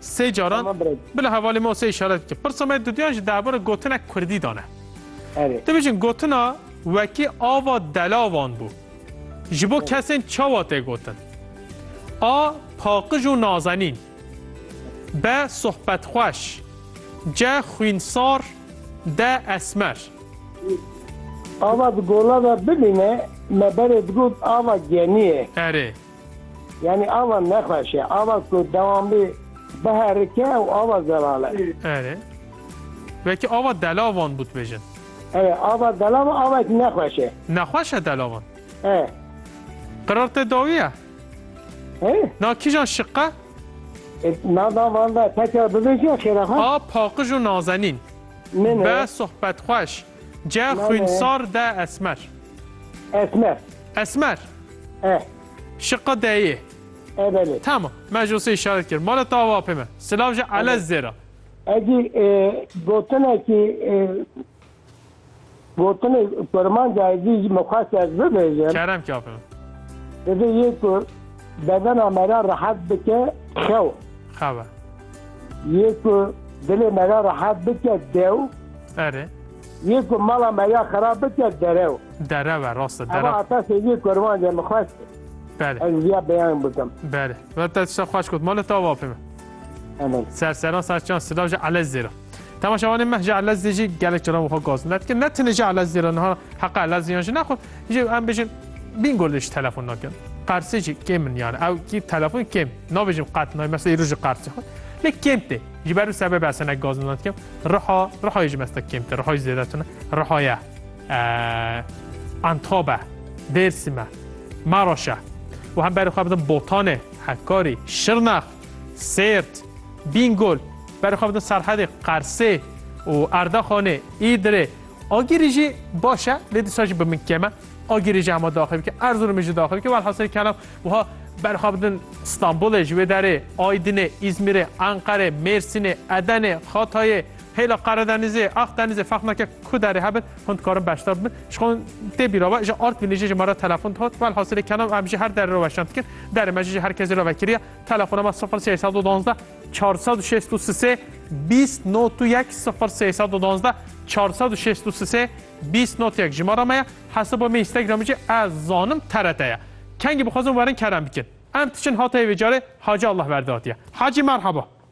Sê caran bila hevalê me û sê îşaret bike. Pirsa me duduyan ji derbara gotinek kurdî dan e. Erê. Dibêjin gotina wekî ava delavan bû. Ji bo kesên çawa tê gotin? A. Paqij û nazenîn. B. Sohbetxweş. C. Xwînsar. D. Esmer. Ava di gola de bimîne me berê digot ava genî ye. Erê. Yanî ava nexweş e. Ava ku dewam bê biherike ew ava zelal e. Erê. Wekî ava delavan bû dibêjin. Erê ava delavan avek nexweş e. Nexweş e delavan? E. Qirar te dawiye? E. Na kîjan şiq e? E, na da van da tekrar bibêje xêra xwe. A paqij û nazenîn. Min e. Be sohbetxweş. Ce xwîn sar de esmer. Esmer. Esmer. E. Şiqa deyê. E belê. Tamam. Me ji sê işaret kir. Mala te ava apê me. Silav ji elez zêra. Ecî e, gotinekî e, gotinê kurmanca ecî ji min xwest ez bibêjim. Kerem ki apê me. Divê yê ku bedena me re rehet bike xew. Xeve. Yê ku dilê me ya rehat bike dew. Erê. Yê ku mala me ya xerab bike derew. Derew e rast e derew. Ewa heta sêviyê kerwancê min xweş kir. Belê. Ez viya beyan bikim. Belê. Ve te tişta xweş got. Mala te ava pê min. Amen. Serseran serçan silav ji Elez zêra. Tama şawanê meh ji Elezî jî gelek cara wiha gaz net ki ne tine ji Elezî re niha heqa Eleziyan jî nexwe jî em bijin bîngo lê ji telefon nakin. Qersê jî kêm min yani ew kî telefon kêm nabêjim qet nay mesela îro ji qersê xwe lê kêm tê ji ber û sebebe ez hinek gaz net kim riha rihayê ji mesta kêm te rihayê zêde tune rihaya Antabe Dêrsime Maraşe û hem berê xwe bidim Botanê Hekarî Şirnex Sêrt, Bîngol, Berxwebûna Serhedê, Qersê û Erdaxanê, Îdirê, Agirî jî baş e lê dîsa jî bi min kêm e. Agirî jî hema daxil bike, Erzurumê jî daxil bike. Welhasilê kelam wiha berxwebûn Stenbolê ji wê derê, Aydinê, Îzmîrê, Enqerê, Mêrsînê, Edenê, Xatayê, Hêla Qeredenizê, Axdenizê ferq nake ku derê hebin, hûn dikarin beşdar bibin. Ji xwe tê bîra be, ji Artvînê jî ji me re telefon dihat. Welhasilê kelam em ji her derê re weşan dikin. Derê me jî ji her kesê re vekiriye. Telefona me sifir sey sed û duwazdeh çar sed û şêst û sisê bîst not û yek sifir sey sed û duwazdeh çar sed û şêst û sisê bîst not yek jimara me ye. Hesaba me Instagramê jî ez zanim TRT ye. Kengî bixwazin werin kerem bikin. Em diçin hatayê vê carê Hacî Allahverdi hatiye. Hacî merheba.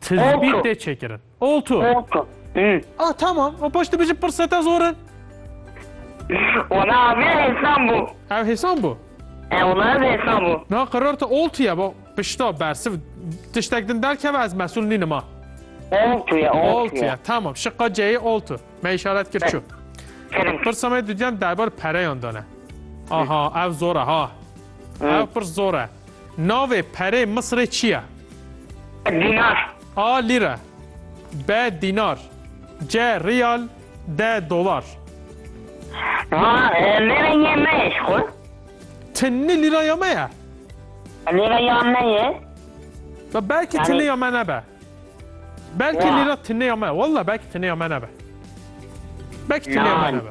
Tizbît tê çêkirin. Oltu. Oltu. Ah tamam. O paş tu bijî pirseta zor in. Wala avê hêsan bû. Ev hêsan bû. E wala ev hêsan bû. Na qerar te oltu ye bo. Pişta bersiv tiştek din derkeve ez mesûl nînim ha. Oltu ye, oltu, oltu ye. ye. Tamam. Şiqa ceyê oltu. Me işaret kir çu. Kirim. Pirsa me dudyan derbar pereyan dane. Aha, ev zor e ha. Ev pirs zor e. Navê perê Misirê çi ye? Dînar. A lîre. B dînar. C riyal. D dolar. Ma lîre yê me ye ji xwe. Ti ni lîra ya me ye? Lîra ya me ye. Ve belkî Yani- tine ya me nebe. Belkî Ya. lîra tine ya me. Wallah belkî tine ya me nebe. Belkî tine ya me Nan. nebe.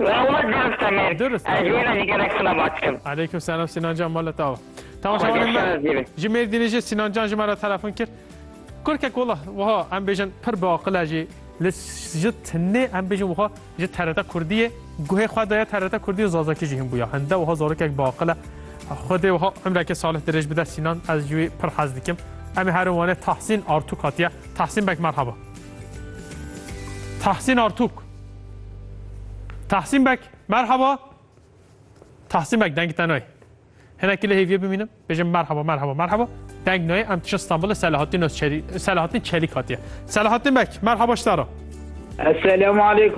Lawaz Zarif Temer, Durust ez ji Êlazî gelek silavat dikim. Aleykum selam Sinan can mala te ava. Temaşevanên me Xwedeşanaz dîbin. ji Mêrdînê jî Sinan can ji me re telefon kir. Kurkek wala wiha em bêjin pir bi aqile jî li ji tinê em bêjin wiha ji TRT Kurdiyê guhê xwe daye TRT Kurdiyê Zazakî jî hinbûya. Hinde wiha zarokek bi aqile Xwedê wiha umreke salih dirêj bide Sinan ez ji wî pir hez dikim. Em ê herin wanê Tahsîn Artûk hatiye. Tahsîn beg merhaba. Tahsîn Artûk. Tahsîn Bek, merhaba. Tahsîn Bek, deng te nayê. Hinekî lê hêviyê bimînim, bêjim merhaba, merhaba, merhaba. Deng nayê, em tişin Stenbolê Selahattin Çelîk hatiye. Selahattin Bek, merhaba ji te re. Esselamu